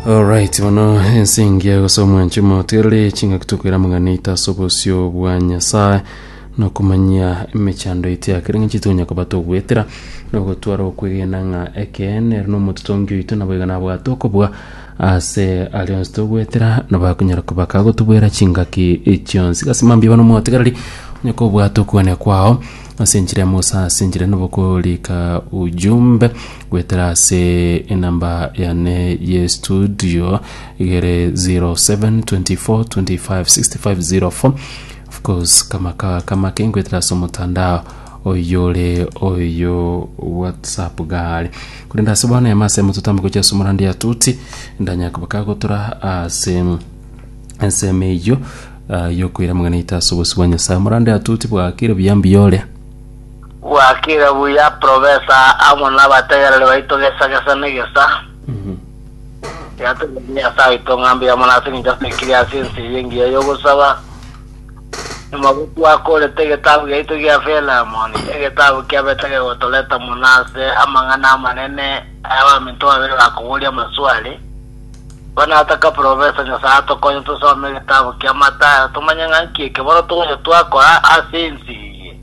Alright, bono ense engiya gose omwanche moterere chingaki tokwera mang'ana ita ase obosio bwa Nyasaye nokomanyia emechando ite yakere ng'a chitonya koba togwetera nogotwara okwegena ng'a ekeene ere nomototongi oito nabo iga nabwate okobua ase aria onsi togwetera nabo akonyara koba kagotobwera chingaki chionsi gasi mambia bono motegereri onye kobwate okwania kwao ase enchera emo gose ase enchera enobo korika ujumbe Goetera ase enamba yane ye studio igere 0724256504 of course kama ka kama ke ngoetera ase omotandao oyore oyo whatsapp gare korende ase bono ema ase mototambe gochia ase omorandi atuti ndanya kobaka gotora ase ensemo eyio ah, yokoira amang'ana aito ase obosio bwa Nyasaye. Omorande atuti bwakire buya mbiyore. Gwakire buya profesa amo nabategereri baito gesa gesa negesa. Tigategereri Nyasaye oito ng'a mbuya mono ase engencho asekirie ase ense eye engiya y'ogosaba. Nyuma gotwakorete egetabu giaito gia Philemon, egetabu kiabete kegotoreta mono ase amang'ana amanene ay'abaminto babere bakoboria amaswali. Igo nataka profesa Nyasaye atokonye tosome egetabu kia Matayo tomanye ng'a nki ekeboro togocha twakora ase ense eye.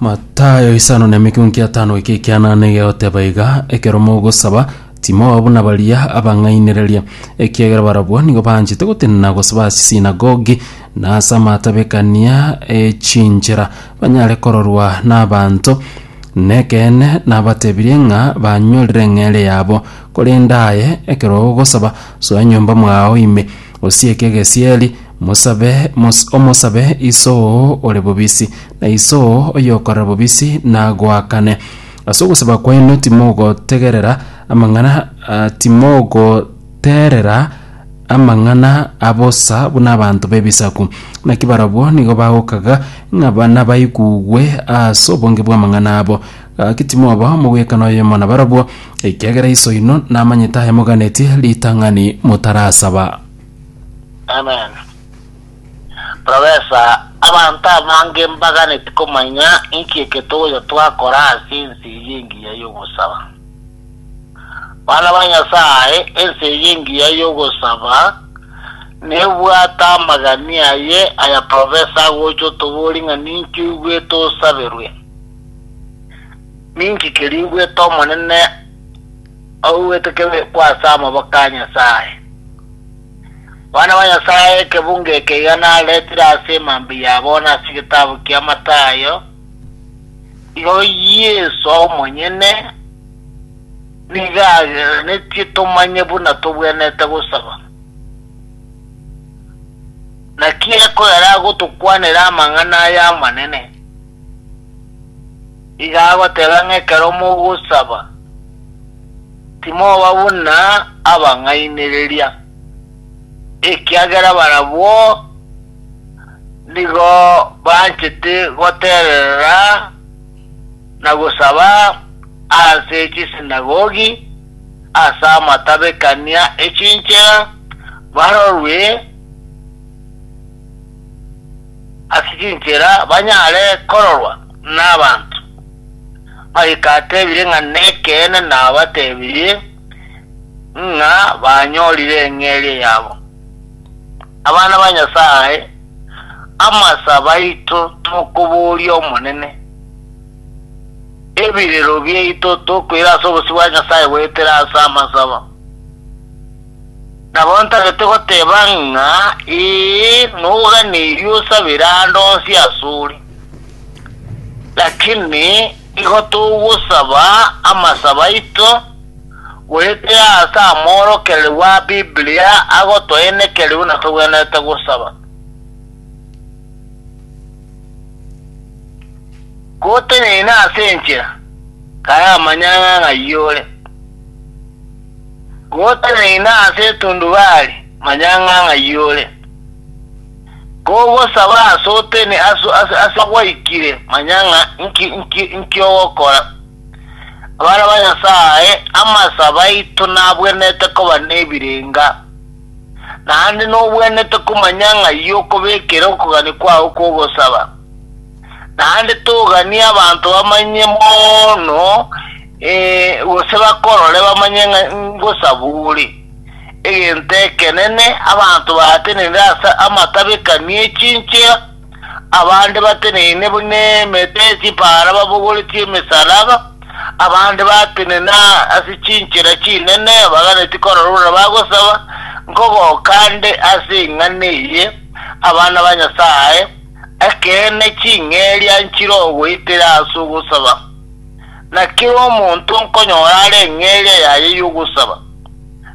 Matayo isano na emikunki etano eke ekianana egegoteba iga, Ekero mogosaba, timoba buna baria abang'ainereria, ekiagera barabwo nigo banchete gotenena gosaba ase sinagogi, na ase amatabekania e chinchera, banyare kororwa nabaanto. Nekeene nabatebirie ng'a banyorire eng'eere yabo. Korende aye, ekero ogosaba, soa enyomba mwao ime, osieke egesieri, Mosabe, mos, omosabe Iso oo ore bobisi, na Iso oo oyokorera bobisi nagoakane. Ase ogosaba kwaino timogotegerera amang'ana ah, timogoterera amang'ana a bosa buna abanto b'ebisaku. Naki barabwo nigo bagokaga ng'a ba- nabaigugwe ase obonge bw'amang'ana abo. Gaki timoba omogwekano oyomo nabarabwo, ekiagera Iso oino namanyete ayamoganetie ritang'ani motarasaba. Amen. Professor, abanto abange mbaganeti komanya inki eketogocho twakora ase ense eye engiya y'ogosaba. Bana ba Nyasae, ense eye engiya y'ogosaba nebwate amagani aye aya Professor agocha otoboria ng'a ninki oigwete osaberwe. Ninki keria oigwete Omonene Oigwete kebekwa ase amaboko a Nyasae. Abana ba Nyasae ekebunga eke iga naretire ase emambia yabo na ase egetabu kia Matayo, igo Yeso omonyene nigo aganetie tomanye buna tobwenerete gosaba. Naki ekogera agotokwanera amang'ana aya amanene. Iga agoteba ng'a ekero mogosaba, timoba buna abang'ainereria, ekiagera barabwo nigo banchete gotererera na gosaba ase chisinagogi ase amatabekania e chinchera, barorwe. ase chinchera banyare kororwa nabanto. Mariko atebire ng'a nekeene nabatebirie ng'a banyorire eng'eria yabo. Abana ba Nyasaye, amasabe aito tokoboria Omonene, ebirero biaito tokoira ase obosio bwa Nyasaye goetera ase amasabo. Nabo ntagete goteba ng'a ee, noganeiri osabere aande onsi asore, lakini nigo togosaba amasabo aito, goetera ase amoorokereru a Biblia agotoenekeria buna togwenerete gosaba. Gotenyaina ase enchera, kare amanyang'a ng'ai ore. Goteneina ase etundubari, manya ng'a ng'ai ore. Kogosaba ase otene ase gwaikire, manya ng'a inki ogokora. Abarabwo Nyasae, amasabo aito nabwenerete koba nebirenga, naende nobwenerete komanya ng'ai okobekera okogania kwao kw'ogosaba. Naende toganie abanto bamanye mono, gose bakorore bamanye ng'a ngosabore. Egento ekenene, abanto baateneine ase amatabekani e chinchera, abande bateneine buna emete ye chipaara babogoretie emesaraba, abande batenena ase chinchera chinene baganetie korora buna bagosaba, nkogoka nde ase ing'ana eye, abana ba Nyasae, Ekeene ching'eria nchire ogoitera ase ogosaba, na kera omonto nkonyora are eng'eria yaye y'ogosaba.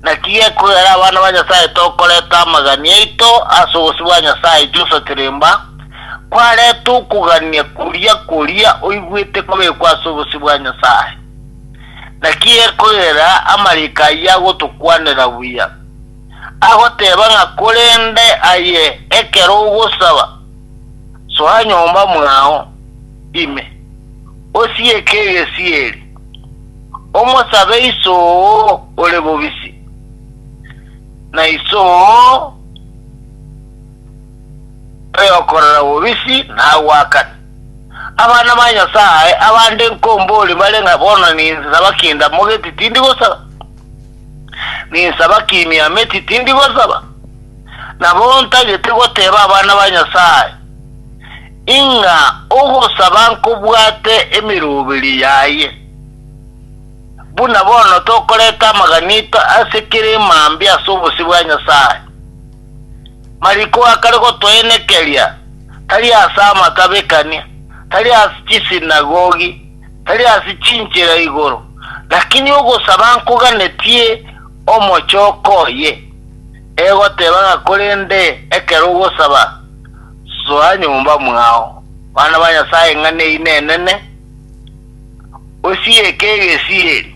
Naki gekogera abana ba Nyasaye tokoreta amagani aito ase obosio bwa Nyasaye Joshua Kiremba, kwareta okogania koria koria oigwete kobekwa ase obosio bwa Nyasaye. Naki gekogera amariko ayio agotokwanera buya. agoteba ng'a korende aye ekero ogosaba, soa nyomba mwao ime, osieke egesieri, omosabe Iso oo ore bobisi, na Iso oo oyokorera bobisi nagoakane. Abana ba Nyasae abande nkomborie bare ng'a bono ninse saba kende amogeti tindi gosaba. Ninsaba kimia ameti tindi gosaba, nabo ntagete goteba abana ba Nyasae, ing'a ogosaba nkobwate emeroberi yaye. Buna bono tokoreta amaganito ase kera emambia ase obosio bwa Nyasae. Mariko akare gotoenekeria tari ase amatabekania, tari ase chisinagogi, tari ase chinchera igoro, lakini ogosaba nkoganetie omochoko oye, egoteba ng'a korende ekero ogosaba, soa nyomba mwao, bana ba Nyasae ng'a neinenene, osiyeke egesiri.